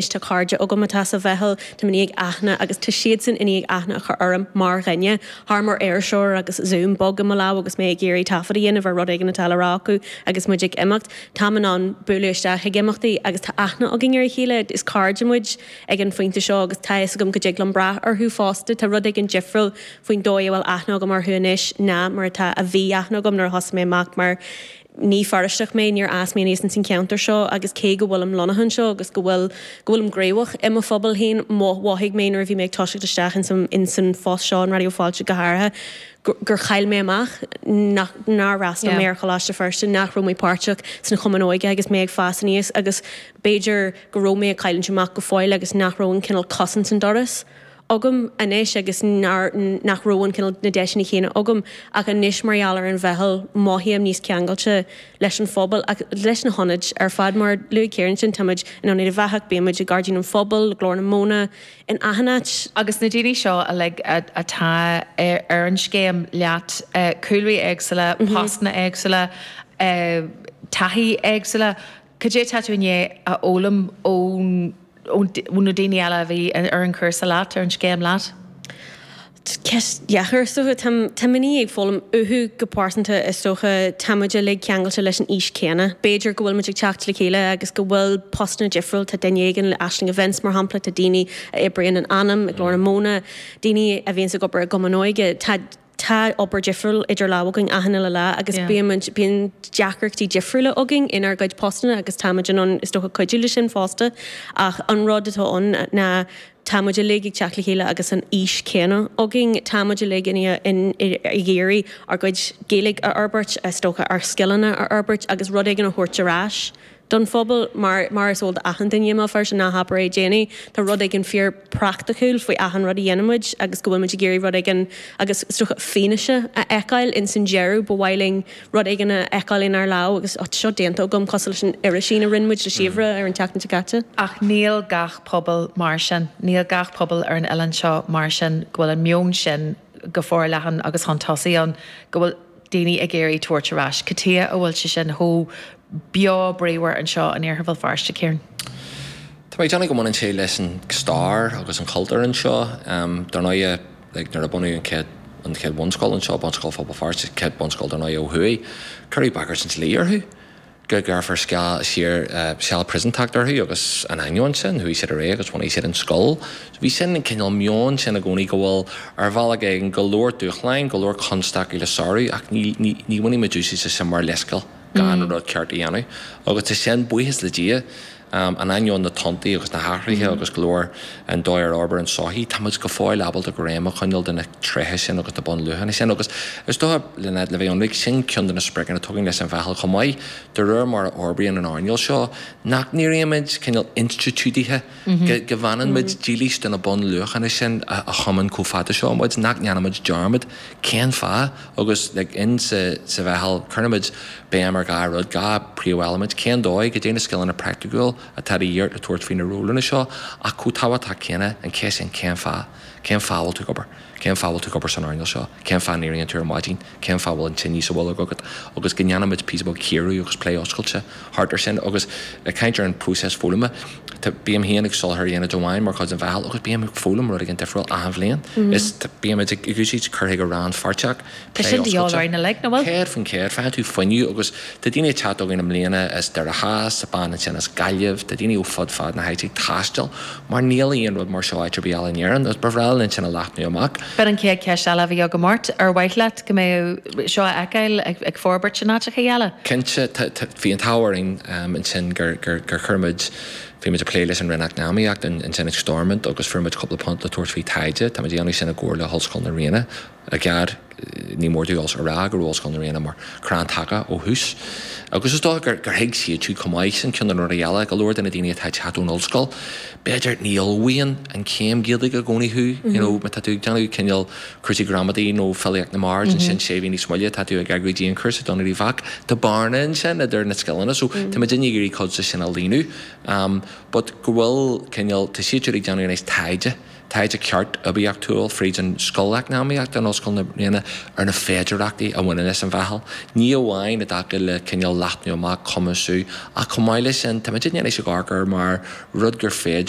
Anois tá cairde agam atá sa mheitheal, táim i ndiaidh aithne agus tá siadsan i ndiaidh aithne a chur orm mar dhuine, seachas mar iriseoir agus Zoom bog i mo lámh agus mé ag iarraidh taifead a dhéanamh ar rud éigin atá le rá acu agus muid ag imeacht. Táim in ann bualadh isteach ag imeachtaí agus tá aithne againn ar a chéile, is cairde muid ag an phointe seo agus tá a fhios agam go dtig liom brath orthu fosta. Tá rud éigin difriúil faoin dóigh a bhfuil aithne agam orthu anois ná mar atá a bhí aithne agam nuair a thosaigh mé amach mar. Ní Feirsteach mé, níor fhás mé aníos ins an cheantar seo agus cé go bhfuilim lonnaithe anseo agus go bhfuil, go bhfuilim gníomhach i mo phobal féin, mhothaigh mé nuair a bhí mé ag toiseacht isteach ins an, ins an phost seo in Raidió Fáilte go háirithe, gur, gur chaill mé amach, nach, nár fhreastal mé ar Choláiste Feirste, nach raibh mé páirteach sna chumainn óige agus mé ag fás aníos agus b'fhéidir go raibh mé ag cailliúint amach go fóill agus nach raibh an cineál cos ins an doras. agam anois agus nach raibh an cineál, na deiseanna chéanna agam ach anois mar gheall ar an Mheitheal mothaím níos ceangailte leis an phobal ach leis na hionaid ar fad. Mar a luaigh Ciara ansin táimid in Ionad Uíbh Eachach, bímid i nGairdín an Phobail, Glór na Móna, in achan áit. Agus na daoine seo uilig atá ar an scéim leat, cúlraí éagsúla, postanna éagsúla, taithí éagsúla, Cad é atá tú i ndiaidh a fhoghlaim ó na daoine eile a bhí ar an chúrsa leat, ar an scéim leat? Ceist dheacair, is dócha. Táim i ndiaidh ag foghlaim uathu go pearsanta, is dócha. Táimid uilig ceangailte leis an aois chéanna. B'fhéidir go bhfuilimid ag teacht le chéile agus go bhfuil postanna difriúil. Tá duine éigin le Aisling Events, mar shampla, tá daoine a oibríonn in Anam, i nGlór na Móna, daoine a bhíonns ag obair i gCumann Óige. tá obair difriúil idir lámha againn achan uile lá agus bímid, bíonn deacrachtaí difriúla againn inár gcuid postanna agus táimid in ann is dócha cuidiú leis sin fosta ach an rud atá ann ná táimid uilig ag teacht le chéile agus an fhís chéanna againn. Táimid uilig ag iarraidh ár gcuid Gaeilge a fhorbairt, is dócha ár scileanna a fhorbairt agus rud éigin a thabhairt ar ais don phobal. Mar is eol d'achan duine, má oibríonn sna hábhair dhéanaí, tá rud éigin fíor praiticiúil faoi achan rud a dhéanann muid agus go bhfuil muid ag iarraidh rud éigin agus fianaise a fheiceáil ins an deireadh. Ba mhaith linn rud éigin a fheiceáil inár lámh agus tá seo déanta agam cosúil leis an irisín a rinne muid le Síobhra ar an tseachtain seo caite. Ach níl gach pobal mar sin. Níl gach pobal ar an oileán seo mar sin go bhfuil an meon sin. go forleathan agus chun tosaigh ann, go bhfuil daoine ag iarraidh tabhairt ar ais. Cad chuige a bhfuil sé sin chomh beo bríomhar anseo in Iarthar Bhéal Feirste, Ciara? Tá mé ag déanamh go mbaineann sé leis an stair agus an cultúr anseo. Dar ndóighe, like, nuair a bunaíodh an chéad, an chéad bhunscoil anseo, Bunscoil Phobal Feirste, chéad bhunscoil dar ndóighe ó thuaidh, cuireadh bagairt an dlí orthu. go gcuirfear seal siar, seal príosúntachta orthu agus in ainneoin sin chuaigh siad ar aghaidh agus bhunaigh siad an scoil. So bhí sin an cineál meon sin i gcónaí go bhfuil ar bhealach éigin go leor dúshláin, go leor constaicí le sárú ach ní, ní, ní bhainfidh muid úsaid as sin mar leithscéal gan an rud ceart a dhéanamh agus tá sin, buíochas le Dia, In ainneoin na tonntaí agus na hathruithe agus go leor an dóigh ar fhorbair an sochaí, tá muid go fóill ábalta greim a choinneáil de na tréithe sin agus na bunluachanna sin. Agus is dócha, Lynette, le bheith ionraic, sin ceann de na spriocanna atá againn leis an Mheitheal chomh maith, de réir mar a fhorbraíonn an earnáil seo, nach n-éirímid cineál institiúidithe, go bhfanann muid dílis do na bunluachanna sin a thiomáin chomh fada seo muid, nach ndéanaimid dearmad cén fáth, Agus le linn sa Mheitheal, cuirimid béim ar dhá rud, dhá phríomheilimint, cén dóigh, cad é na scileanna praiticiúil atá de dhíth ort le tabhairt faoi na rólanna seo ach chomh tábhachtach céanna, an cheist sin cén fáth? Cén fáth a bhfuil tú ag obair? Cén fáth a bhfuil tú ag obair san earnáil seo? Cén fáth a n-éiríonn tú ar maidin? Cén fáth a bhfuil an tine sa bholg agat? Agus go ndéanaimid píosa beag cíoradh agus plé oscailte. thart ar sin. Agus ag caint ar an próiseas foghlama, tá, bím féin ag soláthar aonaid amháin mar chuid den Mheitheal agus bím ag foghlaim rud éigin difriúil achan bhliain. Is, tá, bímid ag úsáid cur chuige rannpháirteach, plé oscailte, 100%, faigheann tú fuinneamh agus tá daoine ag teacht againn i mbliana as Doire Theas, bean ansin as Gaillimh, tá daoine ó fud fad na háite ag taisteal mar níl aon rud mar seo áit ar bith eile in Éirinn agus ba bhreá linn sin a leathnú amach. B'in an chéad cheist eile a bhí agam ort, ar mhaith leat go mbeadh. seo a fheiceáil ag forbairt in áiteacha eile. Cinnte, bhí an t-ádh orainn ansin gur chuir muid, bhí muid ag plé leis an Roinn Eacnamaíocht ansin ag Stormont agus fuair muid cúpla punt le tabhairt faoi taighde. Tá muid ag déanamh sin i gcomhar le hOllscoil na Ríona. I gcead, ní mór dúinn a rá go raibh Ollscoil na Ríona mar chrann taca ó thús agus is dócha gur thuig siad siúd chomh maith sin ceann de na rudaí eile, go leor de na daoine atá ag teacht ón ollscoil, b'fhéidir, ní ullmhaíonn an chéim Ghaeilge i gcónaí thú, you know, má tá tú ag déanamh cineál, cúrsaí gramadaí nó filíocht na mbard, ansin sé mhí níos moille tá tú ag eagrú dianchúrsa don rudaí bheacht, tá bearna ansin idir na scileanna so tá muid ag iarraidh cuid de sin a líonadh ehm but go bhfuil cineál, tá siad ag déanamh anois taighde, taighde ceart oibiachtúil fríd an scoil eacnamaíochta in Ollscoil na Ríona ar na féidearthachtaí a bhaineann leis an mheitheal, ní amháin i dtaca le cineál leathnú amach, cumasú ach chomh maith leis sin tá muid ag déanamh scagadh air mar rud gur féidir